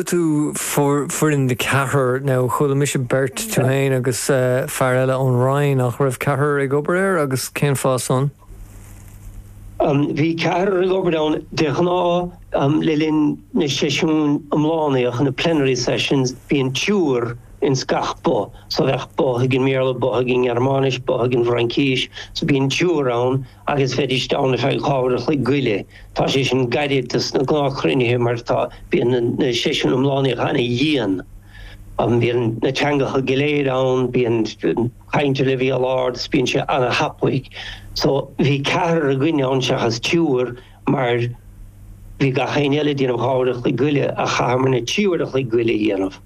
tú foireann de cheathrar, nó chuala mise beirt, tú fhéin agus fear eile ón Roinn, ach raibh ceathrar ag obair air agus cén fáth san? Bhí ceathrar ag obair ann de ghnáth le linn na seisiún iomlánaíocha, na plenary sessions, bíonn triúr ins gach both, so bheadh both ag an mBéarla, both ag an nGearmáinis, both ag an bhFraincís, so bíonn triúr ann. agus bheidís ann ar feadh dhá uair a chloig go leith. Tá sé sin gairid do sna gnáthchruinnithe mar tá, bíonn, na seisiúin iomlánaíocha ana-dhian. Bíonn na teangacha go léir ann, bíonn caint ar leibhéal ard is bíonn sé ana-thapaidh. So, bhí ceathrar againn ann seachas triúr mar bhí gach éinne eile ag déanamh dhá uair a chloig go leith ach chaitheamarna trí uair a chloig go leith a dhéanamh.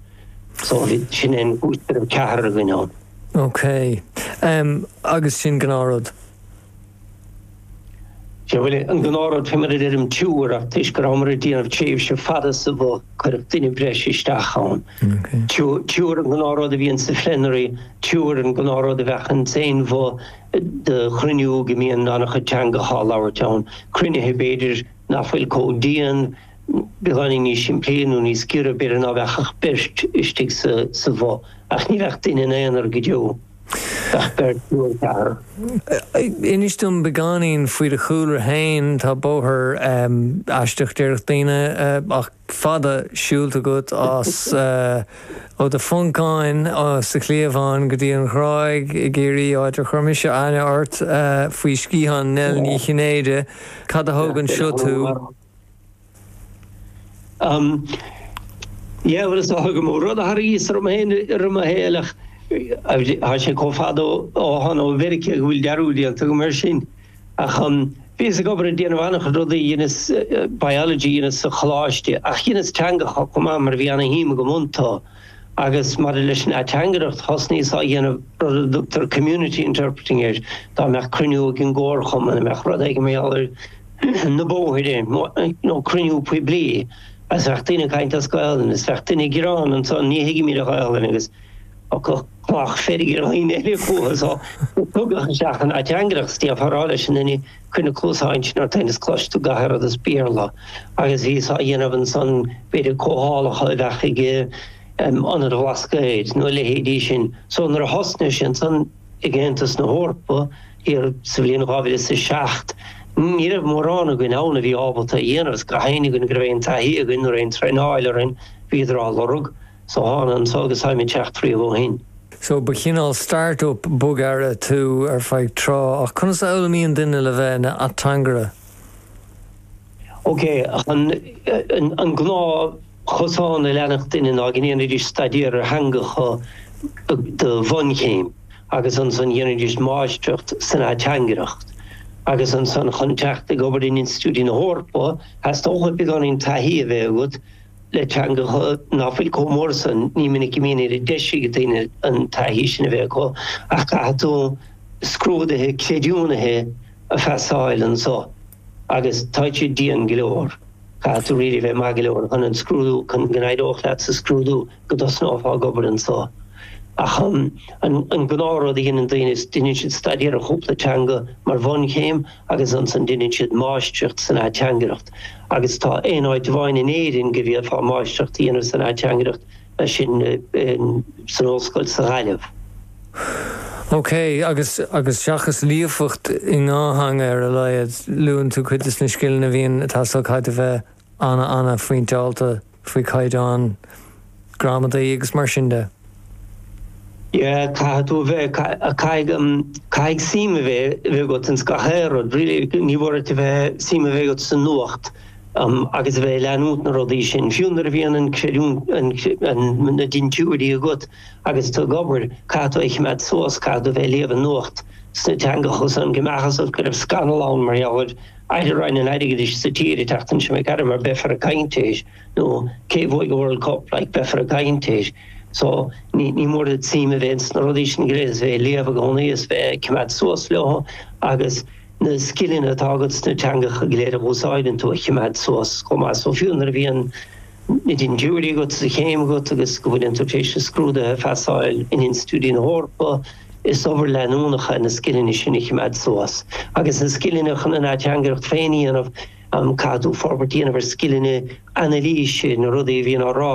So, sin é an chúis go raibh ceathrar againn ann. Okay. Agus sin gnáth rud? Sé an gnáthrud faoi mar a deirim triúr, ach toisc go rabhamar ag déanamh tréimhse fada sa bhoth, cuireadh duine breise isteach ann. Triúr an gnáthrud a bhíonn sa phlenary, triúr an gnáthrud a bheadh ins aon bhoth do chruinniú go mbíonn an-chuid teangacha á labhairt ann, cruinnithe, b'fhéidir, nach bhfuil chomh dian, beagáinín níos simplí nó níos giorra, b'fhéidir, ná bheadh ach beirt istigh sa bhoth. Ach ní bheadh duine ina aonar go deo. Inis dom beagáinín faoi do chúlra féin. Tá bóthar aisteach, déarfadh daoine, ach fada, siúlta agat as ó do Phoncáin sa chliabhán go dtí an Ghráig i gCiarraí, áit ar chuir mise aithne ort faoi sciathán Nell Ní Chinnéide. Cad a thóg anseo tú? Bhuel is dócha go mb'é rud a tharraingíos orm féin i rith mo shaoil, ach tá sé chomh fada ó thána ó Mheiriceá go bhfuil dearúd déanta agam air sin. Ach bhíos ag obair ag déanamh an-chuid rudaí, dheineas biology a dhéanamh sa choláiste, ach dheineas teangacha chomh maith mar bhí an-shuim agam iontu. Agus maidir leis an ateangaireacht, thosnaíos á dhéanamh rud a dtugtar community interpreting air, dá mbeadh cruinniú ag an gcomharchumann, dá mbeadh rud éigin mar gheall ar na bóithre, nó cruinniú poiblí, agus bheadh daoine ag caint as Gaelainn, is bheadh duine ag gearán ansan, ní thuigimid aon Ghaelainn, agus thiocfadh cochall feirge ar dhaoine eile fúthu, so tugadh isteach an ateangaireacht, is déarfá a rá leis an duine, cuir na cluasáin sin ort féin is cloisfidh tú gach aon rud as Béarla, agus bhíos-sa á dhéanamh ansan, b'fhéidir comhdhálacha a bheadh ag Ionad an Bhlascaoid, nó a leithéidí sin, so nuair a thosnaigh sé ansan ag Aontas na hEorpa, thiar sa bhliain 2007, ní raibh mórán againn ann a bhí ábalta a dhéanamh, is go háirithe againn go raibh aon taithí againn nó aon traenáil orainn, bhíodar á lorg. So thána anseo agus táim ag teacht riamh ó shin. So ba chineál start-up bog a d'éirigh tú ar feadh tráth, ach conas a fhoghlaimíonn duine le bheith ina ateangaire? OK, an gnáth chosán a leanadh daoine ná go ndéanfaidís staidéar ar theangacha do bhunchéim agus ansan dhéanfaidís máistreacht san ateangaireacht agus ansan chun teacht ag obair in institiúidí na hEorpa theastóchadh beagáinín taithí a bheith agat le teangacha ná fuil chomh mór san. Ní minic a bhíonn oiread deise ag daoine an taithí sin a bheith acu ach caithfidh tú scrúduithe creidiúnaithe a phasáil anso. Agus tá siad dian go leor. Caithfidh tú really bheith maith go leor chun an scrúdú, chun go n-éireodh leat sa scrúdú go dtosnófá ag obair anseo. Ach an gnáth rud a dhéanann daoine is deineann siad staidéar ar chúpla teanga mar bhunchéim agus ansan deineann siad máistreacht san ateangaireacht. Agus tá aon áit amháin in Éirinn go bhféadfá máistreacht a dhéanamh san ateangaireacht, sé sin san Ollscoil sa Ghaillimh. OK, agus, agus seachas líofacht i ndá theanga ar a laghad, luann tú cuid des na scileanna a bhíonn, atá, so caithfidh tú a bheith ana-ana-phointeáilte faoi chaighdeán gramadaí agus mar sin de. Yeah, caithfidh tú a bheith, caithfidh, caithfidh suim a bheith, a bheith agat in gach aon rud, really, ní mór duit a bheith, suim a bheith agat sa nuacht um agus a bheith ag leanúint na rudaí sin, fiú nuair a bhíonn an creidiúint, an, na dintiúirí agat. Agus tú ag obair, caithfidh tú é a chimeád suas, caithfidh tú bheith ag léamh an nuacht sna teangacha san, go mbeadh a fhios agat go raibh scannal ann mar gheall ar Aire Roinn an Airgidis sa tír ag teacht ansin ag aire mar beifear ag caint air nó cé bhuaidh an World Cup like beifear ag caint air. So ní ní mór duit suim a bheith ins na rudaí sin go léir is bheith ag léamh i gcónaí is bheith ag cimeád suas leo agus na scileanna atá agat sna teangacha go léir a dh'úsáideann tú a chimeád suas chomh maith. So fiú nuair a bhíonn Na dintiúirí agat, is an chéim agat, agus go bhfuileann tú tar éis scrúduithe a phasáil in institiúidí na hEorpa, is obair leanúnach é na scileanna sin a chimeád suas. Agus na scileanna chun an ateangaireacht féin a dhéanamh, caithfidh tú forbairt a dhéanamh ar scileanna anailíse, na rudaí a bhíonn á rá,